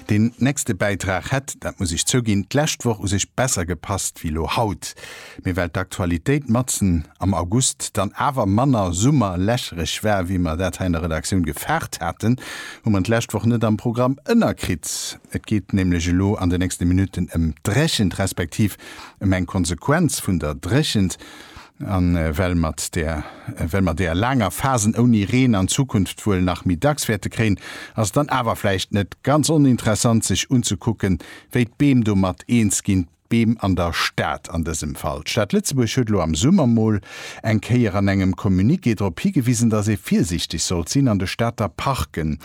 Deen nächste Bäitrag hätt, dat muss ech zouginn, d'lescht Woch u sech besser gepasst wéi lo haut, mee well d'Aktualitéit matzen am August dann awer manner summerlächereg war, wéi mer dat hei an der Redaktioun gefaart haten, hu mer d'lescht Woch net am Programm ënnerkritt. Et geet nämlech elo an de nächste Minutten ëm d'Dréchent, respektiv ëm eng Konsequenz vun der Dréchent. A well mat der well mer der laanger Phasen ouni Reen an Zukunft wuel nach méi dacks wäerte kréien, ass et dann awer vläicht net ganz oninteressant sech unzekucken, wéi d'Beem domat eens ginn, d'Beem an der Stad an dësem Fall. D'Stad Lëtzebuerg huet elo am Summer mol eng Kéier an engem Communiqué drop higewisen, datt ee virsiichteg sollt sinn an de Stater Parken.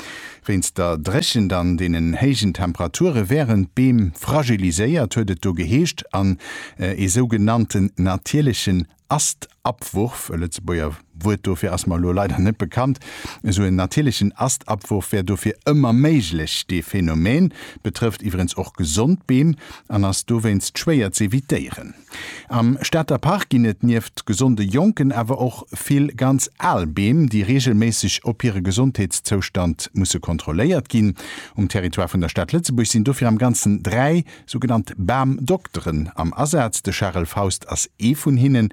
Wéinst der Dréchent an deenen héijen Temperature wären d'Beem fragiliséiert, huet et do geheescht, an ee sougenannten natierlechen Astabwurf, e Lëtzebuerger Wuert dofir ass mer elo leider net bekannt, esou en natierlechen Astabwurf wär dofir ëmmer méiglech. Dee Phänomen betrëfft iwwerens och gesond Beem an ass dowéinst schwéier z'evitéieren. Am Stater Park ginn et nieft gesonde jonken awer och vill ganz al Beem, déi reegelméisseg op hire Gesondheetszoustand musse kontrolléiert ginn. Um Territoire vun der Stad Lëtzebuerg sinn dofir am Ganzen dräi sougenannt Bamdokteren am Asaz. De Charel Faust ass ee vun hinnen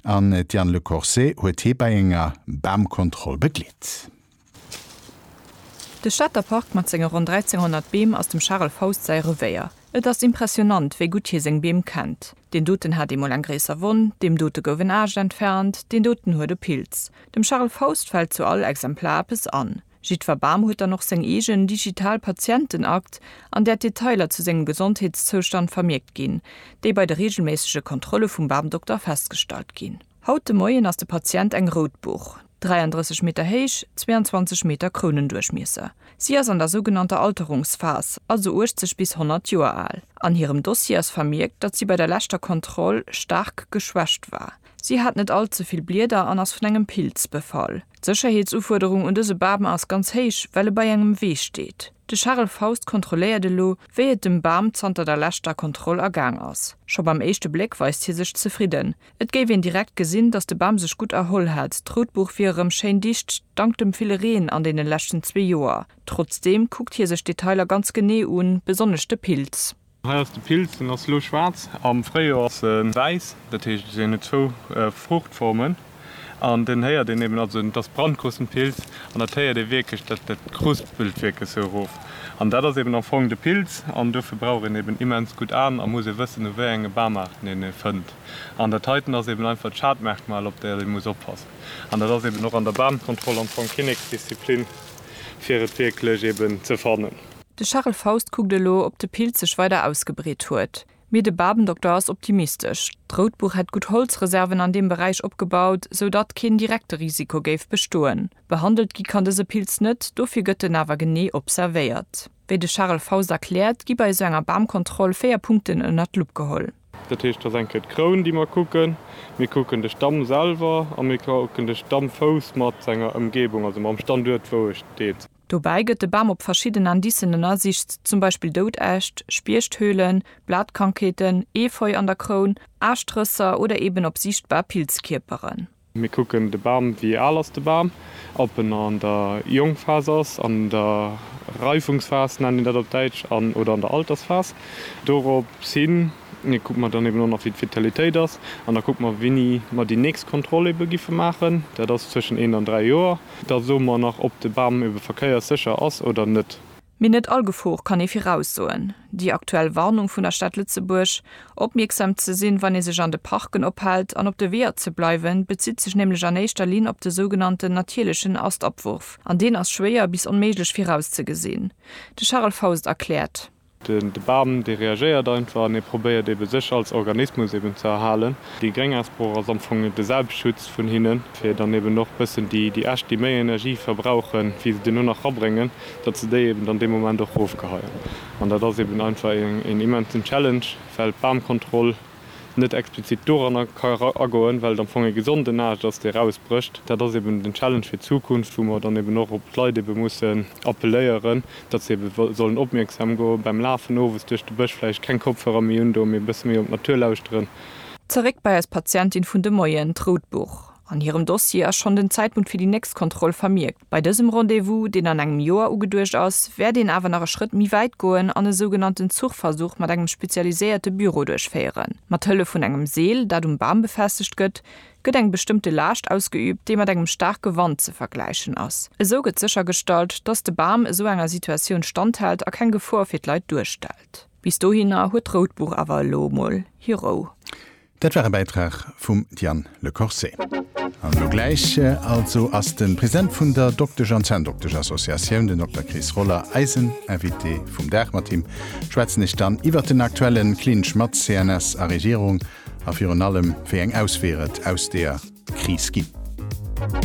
an d'Diane Lecorset huet hie bei enger Bamkontroll begleet. De Stater Park mat senge ronn 1300 Beem ass dem Charel Faust säi Revéier. Et ass impressionant, wéi gutt hie seng Beem kennt. Deen doten hat eemol eng gréisser Wonn, deem dote gouf en Aascht entfernt, deen doten huet e Pilz. Dem Charel Faust fält zu all Exemplar eppes an. Jiddwer Bam huet dann och seng eegen digital Patientenakt, an där d'Detailer zu sengem Gesondheetszoustand vermierkt ginn, déi bei de reegelméissege Kontrolle vum Bamdokter festgestallt ginn. Haut de Moien ass de Patient eng rout Buch, 33 Meter héich, 22 Meter Krounenduerchmiesser. Si ass an der sougenannter Alterungsphas, also 80 bis 100 Joer al. An hirem Dossier ass vermierkt, datt si bei der leschter Kontroll staark geschwächt war. Si hat net all ze vill Blieder an ass vun engem Pilz befall. D'Sécherheetsufuerderung un dëse Bam ass ganz héich, well e bei engem Wee steet. De Charel Faust kontrolléiert elo, wéi et dem Bam zanter der leschter Kontroll ergaang ass. Scho beim éischte Bléck weist hie sech zefridden, Et géif een direkt gesinn, datt de Bam sech gutt erholl hätt. D'Routbuch wier erëm schéin dicht, dank dem ville Reen an deene leschten zwee Joer. Trotzdeem kuckt hie sech d'Detailer ganz genee un, besonnesch de Pilz. Hei ass de Pilz, den ass elo schwaarz. Am Fréijoer ass e wäiss, dat heescht, en huet zwou Fruuchtformen. An den héiert een eben, also et ass Brandkruspenpilz, an dat héiert ee wierklech, dat kruspelt wierklech sou erof. An dat ass eben am Fong de Pilz. An dofir brauch een eben immens gutt Aen a muss ee wëssen, u wéi enge Bamaarten een e fënnt. An dat heiten ass eben einfach d'Schadmerkmal, op dat ee muss oppassen. An dat ass eben och an der Bahnkontroll am Fong Kinneksdisziplin, fir et wierklech eben ze fannen. De Charel Faust kuckt elo, ob de Pilz sech weider ausgebreet huet. Mee de Babendokter ass optimistesch. D'Routbuch hätt gutt Holzreserven an deem Beräich opgebaut, sou datt keen direkte Risiko géif bestoen. Behandelt gi kann dëse Pilz net, dofir gëtt en awer genee observéiert. Wéi de Charel Faust erkläert, gi bei esou enger Bamkontroll véier Punkten ënnert d'Lupp geholl. Dat heescht, et ass eng Kéier d'Kroun, déi mer kucken. Mir kucken de Stamm selwer a mir kucken de Stammfouss mat senger Ëmgebung, also mam Standuert, wou e steet. Dobäi gëtt de Bam op verschidden Indicen ënnersicht, zum Beispill dout Äscht, Spieechthöhlen, Blatkrankheeten, Efeu an der Kroun, Aaschtrësser oder eben op siichtbar Pilzkierperen. Mir kucken de Bam, wéi al ass de Bam, ob en an der Jongphas ass, an der Reifungsphas nennt een dat op Däitsch, an oder an der Altersphas. Dorops hin kucke mer dann eben och nach, wéi d'Vitalitéit ass, an da kucke mer, wéini mer déi nächst Kontroll ebe giffe maachen. Dat ass zwëschen eent an dräi Joer. Da soe mer nach, ob de Bam ebe verkéierssécher ass oder net. Mee net all Gefor kann ee viraussoen. Déi aktuell Warnung vun der Stad Lëtzebuerg, opmierksam ze sinn, wann ee sech an de Parken ophält, an op de Weeër ze bleiwen, bezitt sech nämlech an éischter Linn op de sougenannten natierlechen Astabwurf. An deen ass schwéier bis onméiglech virauszegesinn. De Charel Faust erkläert. De Bam, dee reagéiert einfach an e probéiert ebe sech als Organismus eben ze erhalen. Déi gréng Asbroch ass am Fong de Selbstschutz vun hinnen, fir dann eben och bëssen déi Äscht, déi méi Energie verbrauchen, wéi se duerno nach rabréngen, datt se déi eben dann dee Moment och erofgeheien. An dat ass eben einfach een immensen Challenge, well d'Bamkontroll net explizit doranner ka eragoen, well et am Fong ee gesonden Aascht ass, dee rausbrécht. Dat ass eben den Challenge fir d'Zukunft, wou mer dann eben och op d'Leit ebe mussen appelléieren, datt se ebe sollen opmierksam go beim Lafen owes duerch de Bësch, vläicht keng Kopfhörer méi un do, mee e bësse méi op d'Natur lauschteren. Zeréck bei eis Patientin vun de Moien, d'Rout Buch. An hirem Dossier ass schonn den Zäitpunkt fir déi nächst Kontroll vermierkt. Bei dësem Rendez-vous, deen an engem Joer ugeduecht ass, wäert een awer nach e Schrëtt méi wäit goen an e sougenannten Zuchversuch mat engem spezialiséierte Büro duerchféieren. Mat Hëllef vun engem Seel, dat um Bam befestegt gëtt, gëtt eng bestëmmte Laascht ausgeüübt, déi mat engem staarke Wand ze vergläichen ass. Esou gëtt séchergestallt, dass de Bam esou enger Situatioun standhält a keng Gefor fir d'Leit duerstellt. Bis dohinner huet d'Rout Buch awer elo emol hir Rou. Dat war e Bäitrag vum Diane Le Corset. An elo gläich also ass de President vun der Doktesch an Zänndoktesch-Associatioun, den Dokter Chris Roller, eisen Invité vum Dag. Mat him schwätzen ech dann iwwert den aktuelle Clinch mat CNS a Regierung a virun allem, wéi eng Ausweeër et aus deer Kris ginn.